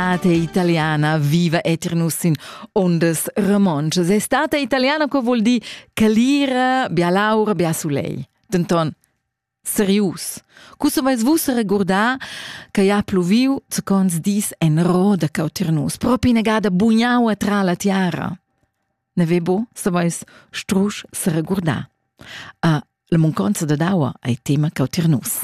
Stata italiana viva etir nus in ondas romontschas. È stata italiana co vuol dir calira, bia laura, bia soleil. Denton, serius. Cussa vais vus regurdar che ha pluviu zecons dis en roda cau tir nus, propi negada bugnau tra la tiara. Nevebo saveis strusch seregurdar. A la munconza da daua ei tema cau tier nus.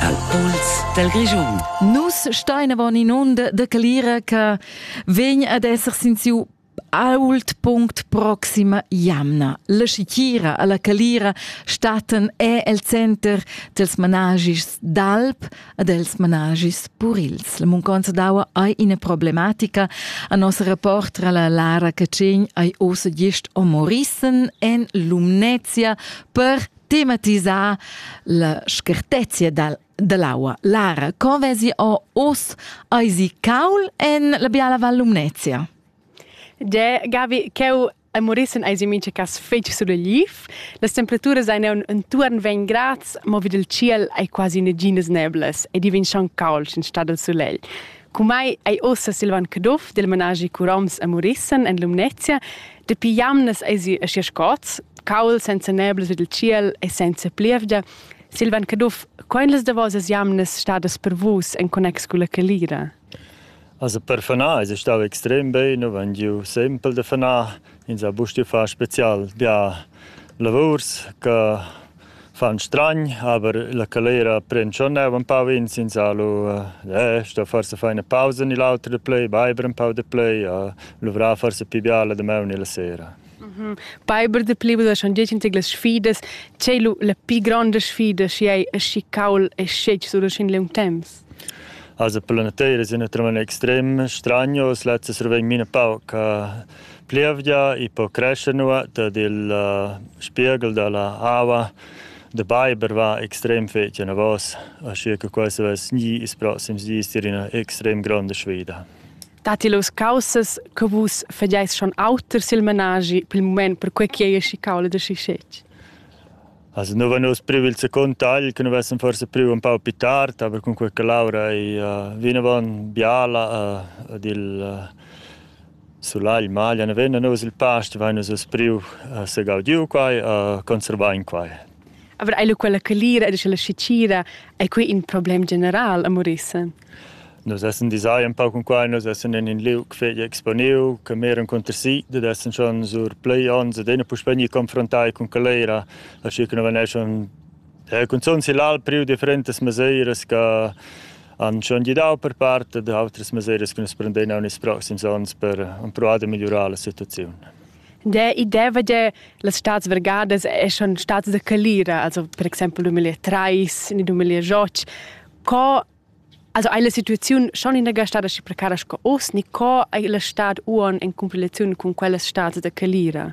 Al Puls del Regiun. Nus stein avon in onda de calira che vegn ad esser sin siu Ault punct proxima jamna. La schitgira alla calira staten è el center dels managis d'alp e dels managis purils. La munconza d'aua ei ina problematica. A nossa reportra la Lara Cacegn ei ossa gist omorissen en Lumnezia per tematisar la schertezia dal dell'aua. Lara, con vesi o os eisi caul en la biala Val Lumnezia? De Gavi, cheu a Morissen eisi mincha cas fetg suleliv. Las temperaturas ein entuorn 20 grads, mo vid il tschiel ei quasi naginas neblas e divin schon caul sin stad del sulegl. Cumai ei ossa Silvan Caduff del managi Curoms a Morissen en Lumnezia, dapi jamnas eisi aschi scots, caul senza neblas vid il tschiel e senza plievgia, Silvan Caduff, quai las davosas jamnas stadas per vus en connex con la calira? Also per fanar es stau extrem bein, nous han giu sempel da fanar, ins ha bustu far spezial bia lavurs che fan stragn, aber la calera pren schon neu un pau ins, ins ha lu eh, sto forse far ina pausa ni l'autra da play, beiber un pau da play, a luvrar forse pi bia la damaun ni la sera. Beiber de Plibbers han detg las sfidas, c'ei lu la pli gronda sfida schi ei aschi caul e scetg sur in liung temps? Also per la nateira è un tremen extrem stranios, letztes survegn mine pauc uh, plievgia e po crescere nua, ed il uh, spiegel della ava de Beiber va extrem fece na vos, aschi che questo es gli is prossims dis in una extrem grande sfida. Datti los caussas che vus fageis schon auter sil menaschi pel moment per quei che ei schiccau da schischetg? Also nu vegnus privil se con tagl che nu vessem forse priu un pau più tard, aber con quella Laura ei uh, vinavon biala uh, ed il uh, sulagl maglia ne venna nus il past vegnus a priu uh, se gaudiu quai, uh, conservar in quai. Aber ei lu quella calira ed la schiccira ei quei in problem general a Morissen? Nus essan disai empau cun quai, nus essan en in liug fetg exponiu che mir encunter si, dad essan schon sur plei onns ed ina puspei gnir confrontai cun calera, aschi che nu vegneschan eh cunzunt sill'Alp priu differentas mesiras che han schon gidau per part ed autras mesiras che nus prendein aunc ils proxims onns per empruar da migliurar la situaziun. Der idea va dir las stads vergadas è schon stadas da calira, also per exempel 2003 in 2008 Co Also ei la situaziun schon inaga stada schi precara sco oz, ni co ei la stad uon en cumpilaziun cun quellas stads da calira?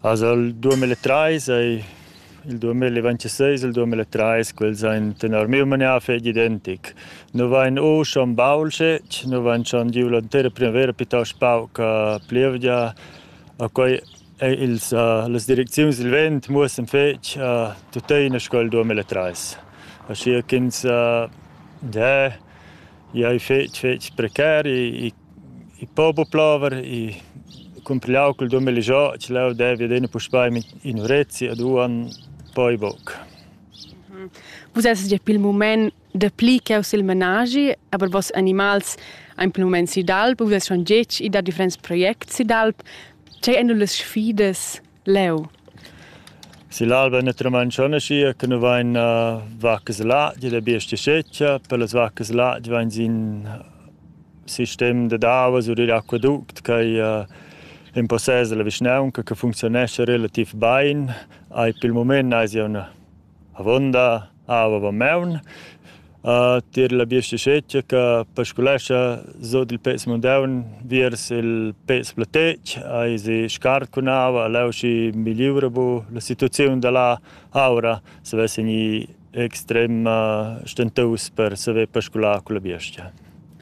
Also il 2030 ei il 2026 il 2030 quels ein tenor miu manier fetg identic. Nu vain u schon baul schec, nu vain schon giu l'entera primavera piuttost pauc plevgia, a quei Eir ils las direcziuns dil vent muossan fetg tuttina sco il duamilla trais, aschia ch'ins dà i ei fetg fetg precar, i i po buca plover, i cumprigliau cul duamilla joc leu devi adina puspei in'urezia u duon poi buc. Vus essas gia pil mument Dapli ch'jeu sil menaschi, aber vos animals ein per moment si d'alp, u vess schon getg i da differents projects si d'alp. Tgei ein las sfidas leu? Sill'alba naturalmein schon aschi che nu vain uh, vacas là, di la bestia sceccia, per las vacas là di vain sin sistem da davas u dell'acquaduct che uh, impossesa la vischnaunca che funzionesce relativ bain. Ai pel moment ais jau avonda Ah, va maun. Uh, tier la biostichetgia che pasculescha sut il pez mundaun viers il pez platec, hai si scarcunava, leu schi migliura bu la situaziun dalla aura, se vessen i extrem uh, stentus per saver pascular con la biostia.